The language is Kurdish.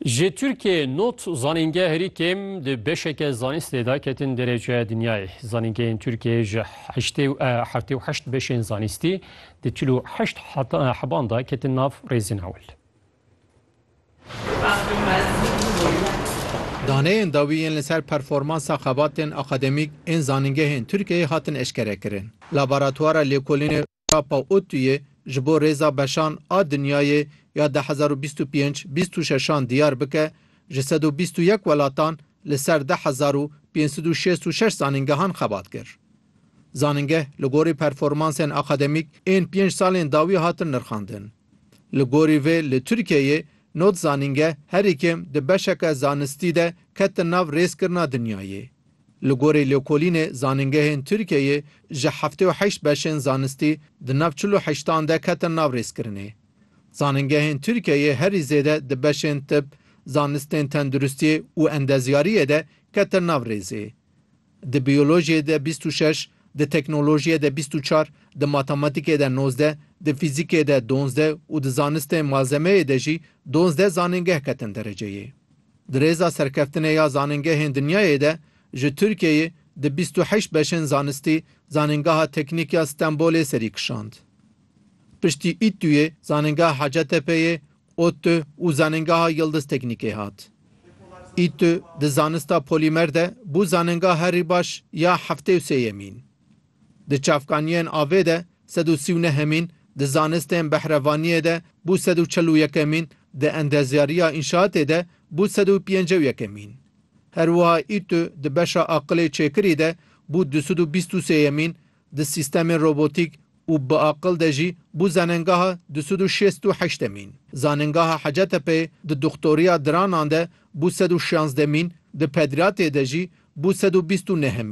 Ji Tirkiyeyê not zanîngeh herî kêm di beşeke zanistê de ketin dereceya dinyayê. Zanîngehên Tirkiyeyê ji heştê û eh, heftê û heşt beşên zanistî di çil û heşt heta- eh, heban de ketin nav rêzên ewil. Daneyên dawî yên li ser performansa xebatên akademîk ên zanîngehên Tirkiyeyê hatin eşkerekirin. Laboratwara lêkolînê Papa Otuyê ji bo rêza beşan a dinyayê ya du hezar û bîst û pênc bîst û şeş an diyar bike, ji sed û bîst û yek welatan li ser du hezar û pênc sed û şêst û şeş zanîngehan xebat kir. Zanîngeh li gorî performansên akademîk ên pênc salên dawî hatin nirxandin. Li gorî vê li Tirkiyeyê nod zanîngeh herî kêm di beşeke zanistî de ketin nav rêzkirina dinyayê. Li gorî lêkolînê zanîngehên Tirkiyeyê ji heftê û heşt beşên zanistî di nav çil û heştan de ketin nav rêzkirinê. Zanîngehên Tirkiyeyê herî zêde di beşên tib, zanistên tenduristiyê û endezyariyê de ketin nav rêzê. Di biyolojiyê de bîst û şeş, di teknolojiyê de bîst û çar, di matematikê de nozdeh, di fîzikê de donzdeh û di zanistên malzemeyê de jî donzdeh zanîngeh ketin dereceyê. Di rêza serkeftinê ya zanîngehên dinyayê de ji Tirkiyeyê di bîst û heşt beşên zanistî Zanîngeha Teknîk ya Stenbolê serî kişand. Piştî Îttuyê, Zanîngeha Hacetepeyê, ODTÜ, û Zanîngeha Yildiz Teknîkê hat. Îttü di zanista polîmer de bû zanîngeha herî baş ya heftê û sêyemîn. Di çavkaniyên avê de sed û sî û neh hemîn, di zanistên behrevaniyê de bû sed û çil û yekemîn, di endezyariya înşaatê de bû sed û pênce û yekemîn. Her wiha Îtü di beşa aqilê çêkirî de bû du sed û bîst û sêyemîn, di sîstemên robotîk û bi aqil de jî bû zenengaha du sed û şêst û heştemîn. Zanengaha Hacetepeyê di doxtoriya diranan de bû sed û şazdemîn, di pediratê de jî bû sed û bîst û nehemîn.